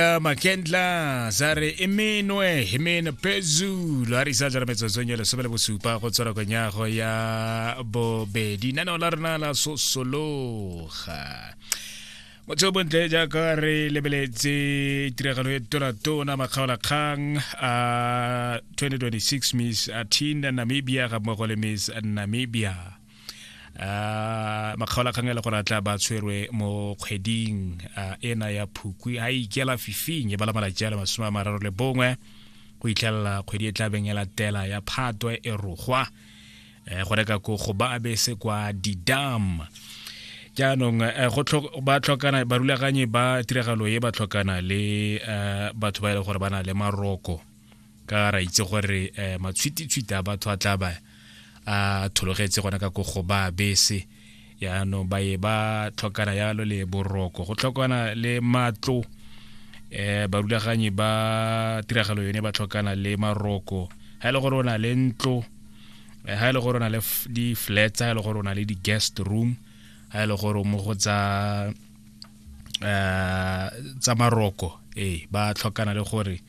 ya makentla sa re e menwe e mene phezulu a re isa jara metsotsong ya lesome le bosupa go tswara konyago ya bobedi naneo la rena la sosologa motho o bontle jaaka re lebeletse tiragalo e tonatona makgaolakgang a 2026 miss atinda namibia ga mmogo le miss namibia uh, makgaolakgang e le gore a tla ba tshwerwe mo kgweding uh, ena ya phukwi a ikela fifing e bala malatsi a le masome a mararo le bongwe go itlhelela kgwedi e tlabeng e latela ya phatwe e rogwa um go reka ko go ba bese kwa didam jaanong eh, ba tlhokana barulaganyi ba tiragalo e ba tlhokana le eh, batho ba e leng gore ba na le maroko ka ra itse gore um matshwititshwiti a batho a tla ba a thologetse gona ka kogo ba bese yaanong ba ye ba tlhokana yalo le boroko go tlhokana le matlo um barulaganyi ba tiragalo yone ba tlhokana le maroko ga e le gore o na le ntlo ga e le gore o na le di-flats ga e le gore o na le di-guest room ga e le gore mo go tsa um tsa maroko ee ba tlhokana le gore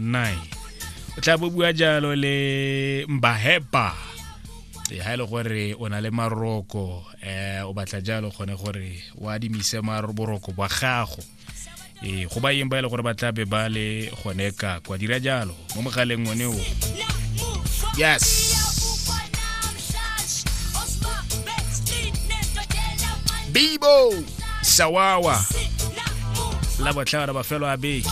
nine o tla bo bua jalo le mbahepa e ha e le gore o na le maroko um o batla jalo kgone gore o adimise boroko bwa gago ee go ba yeng ba e le gore ba tla be ba le gone ka kwa dira jalo mo mogaleng one o yes bibo sawawa la botlhagara bafelo a beke